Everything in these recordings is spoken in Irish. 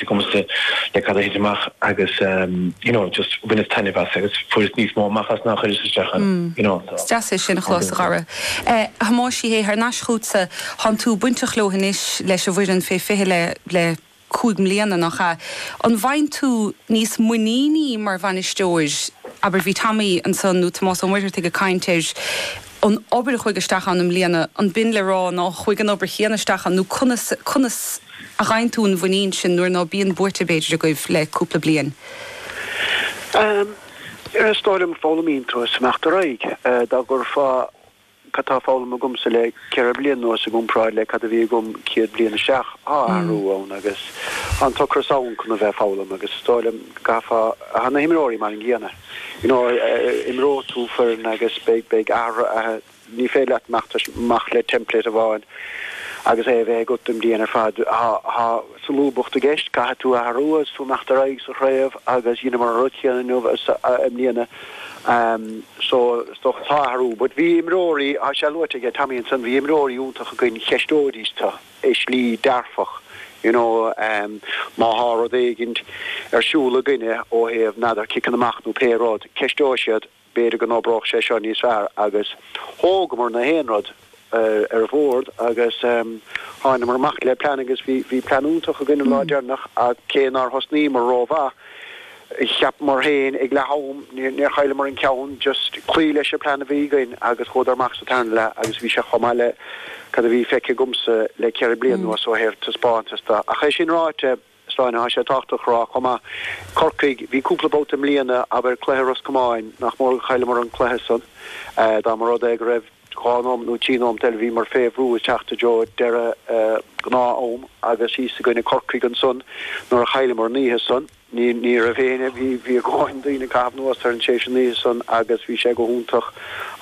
de chumasc le cad a thit amach agus you know just bhaineas taitneamh as agus fuaireas níos mó amach as ná chuireas isteach ann you know so. Is deas é sin a chlos, a chara. A Thomáis Uí Shé, thar n-ais chughatsa, thánn tú bainteach leo anois leis an bhfoireann fé 20 le, le cúig mbliana, nach ea? An bhfaigheann tú níos muiníní mar bhainisteoir, abair bhí Tommy ansan nó Tomás Ó Muirtheartaigh ag caint ar an obair a chuaigh isteach ann i mbliana, an b'in le rá ná chuaigh an obair chéanna isteach ann nó conas, conas a ghin tú an mhuinín sin nuair ná bíonn buaite b'fhéidir agaibh le cúpla bliain? Ehm, is dóigh liom foghlaimíonn tú as imeacht ar aghaidh. Dá gcuirfeá cad tá foghlaim agamsa le ceithre bliain anuas i gcomparáid le cad a bhí agam céad bliain isteach, tá athrú ann agus tá an t-ocras ann chun a bheith ag foghlaim agus is dóigh liom go bhfuil, tá na himreoirí mar an gcéanna. you know imreoidh tú foireann agus beidh, beidh athruithe, athruithe, ní féidir leat imeacht leis, amach le template amháin agus é a bheith agat don bhliain ar fad, tá, tá solúbacht i gceist, caithfidh tú athrú agus tú imeacht ar aghaidh sa chraobh agus dheineamar an rud chéanna inniu, i mbliana, so is dócha tá athrú but bhí imreoirí, tá sé luaite aige Tommy ansan, bhí imreoirí iontach againn, cheisteoidís tú. i slí dearfach, you know, má thá rud éigint ar siúl againne ó thaobh n'fheadar ciceanna amach nó pé rud, ceisteoidh siad, b'fhéidir go n-oibreodh sé seo níos fearr agus thógamar nach aon rud ar bhord agus tháineamar amach le plean agus bhí plean iontach againn an lá deireanach ach cé nár thosnaíomar ró-mhaith, Cheapamar féin ag leath am, níor chailleamar an ceann, just cloí leis an plean a bhí againn agus chuadar amach sa tarna leath agus bhí sé chomh maith le cad a bhí feicthe agamsa le ceithre bliana anuas ó thaobh taispeántas de. Ach é sin ráite, Sláine, tá sé tábhachtach a rá chomh maith, Corcaigh, bhí cúpla babhta i mbliana, abair cluiche Ros Comáin, nach mór gur chailleamar an cluiche san. Dá mba rud é go raibh dhá nóimeat nó trí nóimeat eile, bhíomar fé bhrú ag teacht i dtreo deireadh gnáth-am agus thíos i gcoinne Corcaigh ansan nuair a chailleamar an oíche san. Ní raibh éinne, bhí a dhóthain daoine ag caitheamh anuas orainn tar éis an oíche san agus bhí sé go hiontach,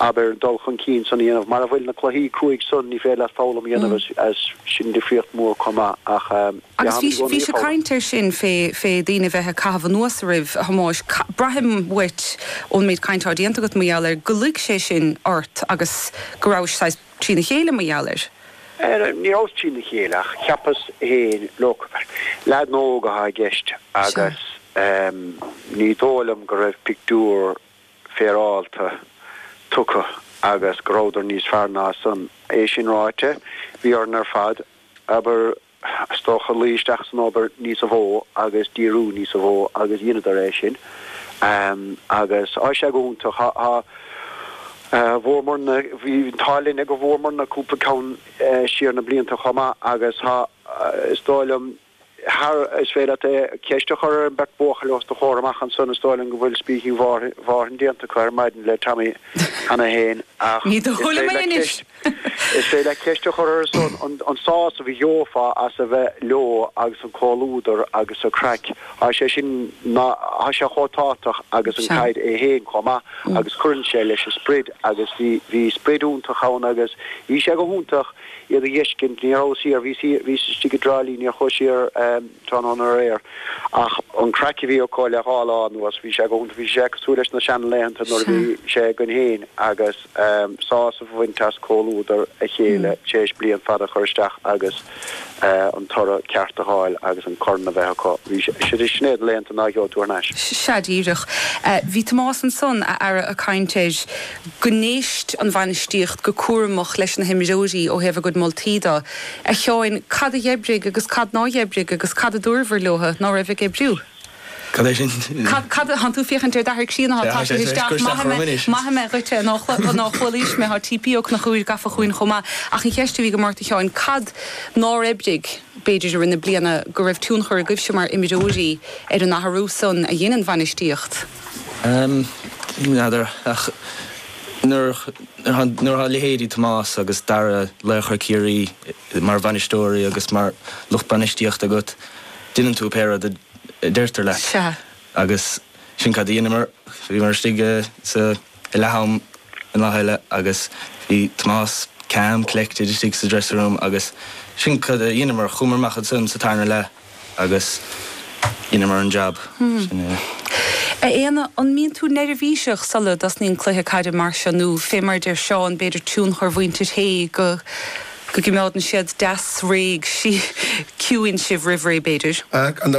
abair, dul chun cinn san a dhéanamh. Mara bhfuil na cluichí cruaidh san, ní féidir leat foghlaim a dhéanamh as sin, difríocht mhór chomh maith ach Agus bhí, bhí sé caint air sin fé, fé daoine bheith ag caitheamh anuas oraibh, a Thomáis, braithim uait ón méid caint atá déanta agat mar gheall air go luigh sé sin ort agus go rabhais saghas, trína chéile, mar gheall air. Ní rabhas trína chéile, ach cheapas féin look, abair, leaideanna óga athá i gceist, agus ní dóigh liom go raibh pictiúr féaráilte tugtha agus go rabhadar níos fearr ná san. É sin ráite, bhí orainn ar fad, abair, Is dócha, luigh isteach san obair níosa mhó agus díriú níosa mhó agus dheineadar é sin agus tá sé go hiontach, tá, tá. Bhuamar na, bhí an t-ádh linn go bhuamar na cúpla ceann siar na blianta chomh maith agus tá, is dóigh liom, thar, is féidir leat ceist a chur ar an bheirt bhuachaill os do chomhair amach ansan, is dóigh liom go bhfuil speaking marathon déanta acu ar maidin le Tommy cheana féin ach is féidir leat ceist. Is féidir leat ceist a chur orthu san, an sásamh a gheofá as a bheith leo agus an comhluadar agus an chraic, tá sé sin, tá sé chomh tábhachtach agus an caid é féin chomh maith agus cuireann sé leis an sprid agus bhí, bhí sprid iontach ann agus bhí sé go hiontach iad a dh'fheiscint, níor chuas siar, bhíos, bhíos istigh i dTrá Lí, níor chuas siar. tráthnóna aréir. Ach an chraic a bhí acu le dhá lá anuas, bhí sé go hiontach. Bhí sé cosúil leis na seanlaethanta nuair a bhí sé againn féin agus sásamh a bhaint as comhluadar a chéile tar éis bliain fada a chur isteach agus an toradh ceart a fháil agus an corn a bheith acu. Sin iad na laethanta ná geobhaidh tú thar n-ais. Sea, díreach. Bhí Tomás ansan, a fheara, ag caint air. go n-éist an bhainistíocht go cúramach leis na himreoirí ó thaobh a gcuid moltaí de. A Sheáin, cad a dh'oibrigh agus cad nár dh'oibrigh agus cad a dúrabhair leotha ná raibh ag oibriú? Cad é sin? Cad, cad a, tánn tú ag féachaint ar d'athair críonna, thá, tá sé isteach, maithfidh mé, maithfidh mé dhuitse a ná, a ná chualaís mé, thá TP Ó Conchúir gafa chugainn chomh maith ach an cheist a bhí agam ort a Sheáin, cad nár oibrigh b'fhéidir i rith na bliana go raibh tionchar agaibhse mar imreoirí ar an athrú san a dhein an bhainistíocht? N'fheadar, ach nuair a tháinig leithéidí Tomás agus Dara, laochra Chiarraí, mar bhainisteoirí agus mar lucht bainistíochta agat, deineann tú pé rud a deirtear leat. Sea. Agus sin cad a dheineamar. Bhíomar istigh sa leath-am an lá eile agus bhí Tomás calm, collected istigh sa dressing room agus sin cad a dheineamar, chuamar amach ansan sa tarna leath, Agus dheineamar an jab, sin é. A Éanna, an mbíonn tú neirbhíseach sula dtosnaíonn cluiche caide mar seo nó, fé mar a deir Seán, b'fhéidir tionchar mhuintir Shé go go gcimeádann siad deas réidh, sí, ciúin sibh roimh ré, b'fhéidir? An